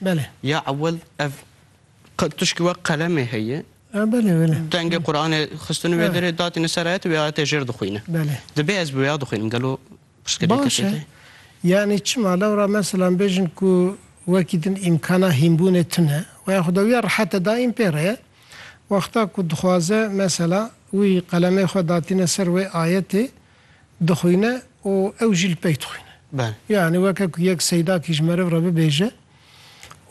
Belê. Ya ewil ev tişkî wek qelemê heye. A belê belê. Dengê Quranê xistin wê derê datîne ser ayetê wê ayetê jêr dixwîne. Belê. Dibê ez bi wêya dixwînim gelo pirsgirêk heke te? Baş e. Yanî çima lewra meselan bêjin ku wekî din îmkana hînbûnê tune û ya xweda wîya rehete daîm pê re ye. Wexta ku dixwaze mesela wî qelemê xwe datîne ser wê ayetê dixwîne û ew jî li pey dixwîne. Yanî weke ku yek seydakî ji meriv re bibêje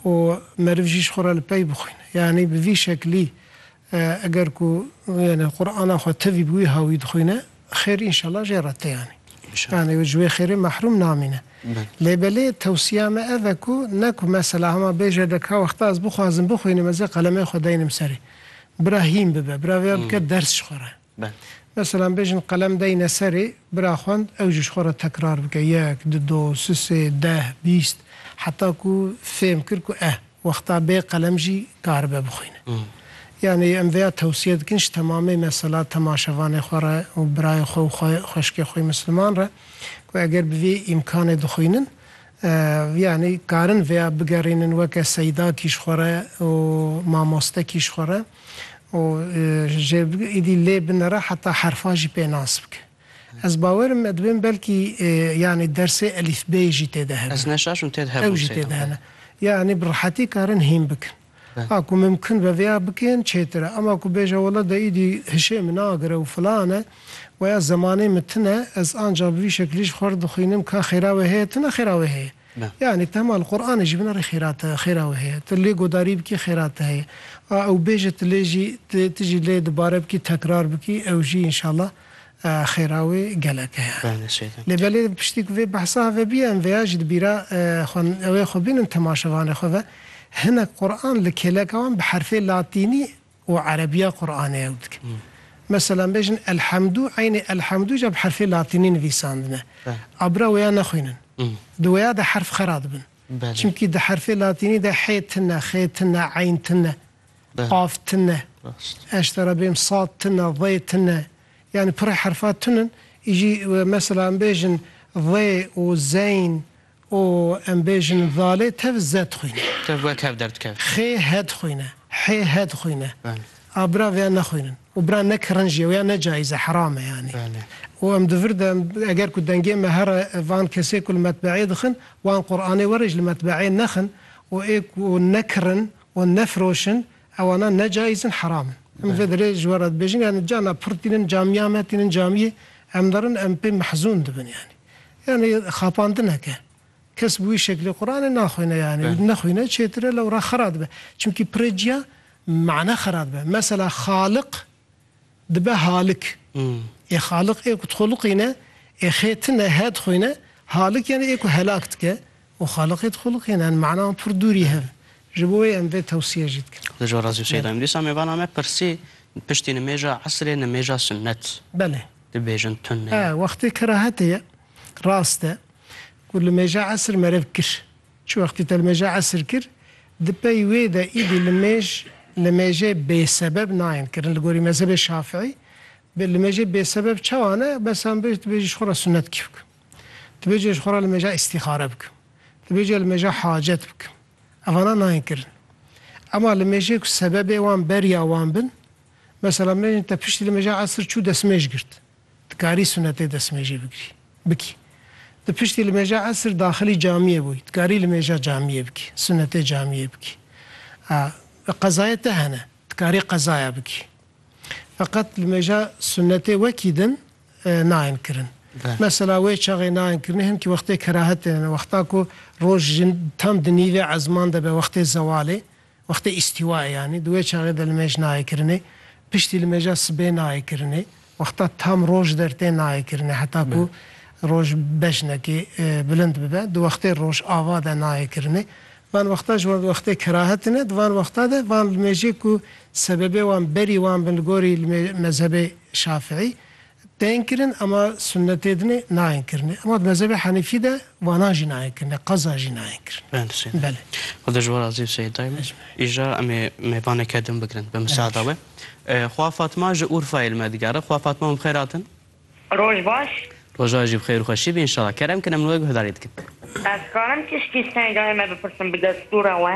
û meriv jî ji xwe re li pey bixwîne. Yanî bi vî şeklî eger ku yanî Qur'ana xwe tevî bi wî hawî dixwîne xêr înşela jê re tê yanî. Yanî ji wê xêrê mehrûm namîne. Lê belê tewsiya me ev e ku ne ku mesela hema bêje de ka wexta ez bixwazim bixwînim ez ê qelemê xwe deynim serê. Bira hîn bibe, bira vêya bike ders ji xwe re. be. Meselan bêjin qelem deyne serê, bira xwend ew jî ji xwe re tekrar bike yek, du, do, si, sê, deh, bîst heta ku fêm kir ku eh wexta bê qelem jî karibe bixwîne. Yanî em vêya tewsiye dikin ji temamê mesela temaşevanê xwe re û birayê xwe û xwe xweşikê xwî misliman re ku eger bi vê îmkanê dixwînin yanî karin vêya bigerînin weke Seyda kî ji xwe re û mamoste kî ji xwe re. û jê bike êdî lê binere heta herfan jî pê nas bike. Ez bawerim me dibên belkî yanî dersê elîfbeyê jî tê de hebe. Ez neşaşim tê de hebe. Ew jî tê de hene. Yanî bi rehetî karin hîn bikin. A ku mimkin be vêya bikin çêtir e. Ema ku bêje wele de êdî hişê min nagire û filan e û ya zemanê min tune ez anca bi vî şekilî ji xwe re dixwînim ka xêra wê heye tune xêra wê heye. Na. Yanî tema li Quranê jî bina rê xêra te xêra wê heye. Tu lê godarî bikî xêra te heye. A ew bêje tu lê jî tu tu jî lê dubare bikî tekrar bikî ew jî înşala xêra wê gelek heye. Bale sêde. Lê belê piştî ku vê behsa heve bîye em vêya jî di bîra xwe ew ê xwe bînin temaşevanê xwe ve hinek Quran li kêleka wan bi herfê latînî û erebîya Quranê ew dikin. Meselan bêjin Elhemdû eynê Elhemdû jî bi herfê latînî nivîsandine. A bira wêya nexwînin. Di wêya de herf xera dibin. Çimkî di herfê latînî de hê tine, xê tine, eyn tine, qaf tine, eştera bêm sad tine, zê tine. Yanî pirrê herfa tune in. Îjî meselan bêjin zê û zeyn Û em bêjin zalê tev ze dixwîne. Tev we kev derdikeve. Xê he dixwîne. Hê he dixwîne. Belê. A bira vêya nexwînin. Û bira ne kirin jî ye. Wêya ne cayîz e, heram e yanî. Belê. Û em di vir de em eger ku dengê me here van kesê ku li metbeeyê dixin wan Quranê were ji li metbeeyê nexin û ê ku ne kirin û ne firoşin ewana ne cayîz in heram in. Em vê derê ji we re dibêjin yanî cana pir tînin camîya me tînin camîyê em derin em pê mehzûn dibin yanî. Yanî xapandine ke kes bi wî şeklê Quranê naxwîne yanî û nexwîne çêtir e lewra xera dibe. Çimkî pirê ciya mane xera dibe. Mesela Xaliq dibe Halik. Ê Xaliq ê ku dixwe liqîne, ê xê tine, he dixwîne, Halik yanî ê ku helak dike, Û xaliqê dixuliqîn en mana û pir dûrî hev. Ji bo wê em vê tewsiye jî dikin. Li jora zî Seyda em dîsa mêvana me pirsî piştî nimêja esrê nimêja sunnet Belê. dibêjin tune ye. He wextê kerahetê ye. Rast e. Ku li mêja esr merev kir. Çi wextî te li mêja esr kir di pey wê de îdî li mêj li mêjê bêsebeb nayên kirin li gorî mezhebê şafîî bi li mêjê bêsebeb çawa ne? Bes em bêj tu bêjî ji xwe re sunnet kî bikim. Dibêje ji xwe re li mêja îstîxare bikim. Dibêje li mêja hacet bikim. Evana nayên kirin. Ema li mêjê ku sebebê wan beriya wan bin, mesela min hêjin te piştî li mêja esir çû destmêj girt. Dikarî sunetê destmêjê bigirî, bikî. Di piştî li mêja esir daxilî camiyê bûyî. Dikarî li mêja camiyê bikî, sunetê camiyê bikî. A bi qezayê te hene. Dikarî qezaya bikî. Feqet li mêja sunetê wekî din. nayên kirin. Mesela wê çaxê nayên kirin him ki wextê kerahet tê ne wexta ku roj jin tam di nîvê ezman de be wextê zewalê wextê îstîwaê yanî di wê çaxê de li mêj nayê kirinê piştî li mêja sibê nayê kirinê wexta tam roj dertê nayê kirinê heta ku roj bejnekê bilind bibe di wextê roj ava de nayê kirinê van wexta ji wan di wextê kerahet tê ne di van wexta de van li mêjê ku sebebê wan berî wan bin li gorî li mezhebê Şafiî, tên kirin ema sunnetê dinê nayên kirinê. Ema di mezhebê Henîfî de vanan jî nayên kirinê, qeza jî nayên kirin. Belê Seyîd Dayim. Belê. Xweda ji we razî Seyîd Dayim. Îja em ê mêvaneke din bigirin bi miseada we. Xwa Fatma ji Urfayê li me digere. Xwa Fatma min bi xêr hatin. Roj baş. Roja jî bi xêr û xweşî be înşala. Kerem kin em li we guhdarî dikin. Ez karim tişkî Seyîd Dayim me bipirsim bi destûra we?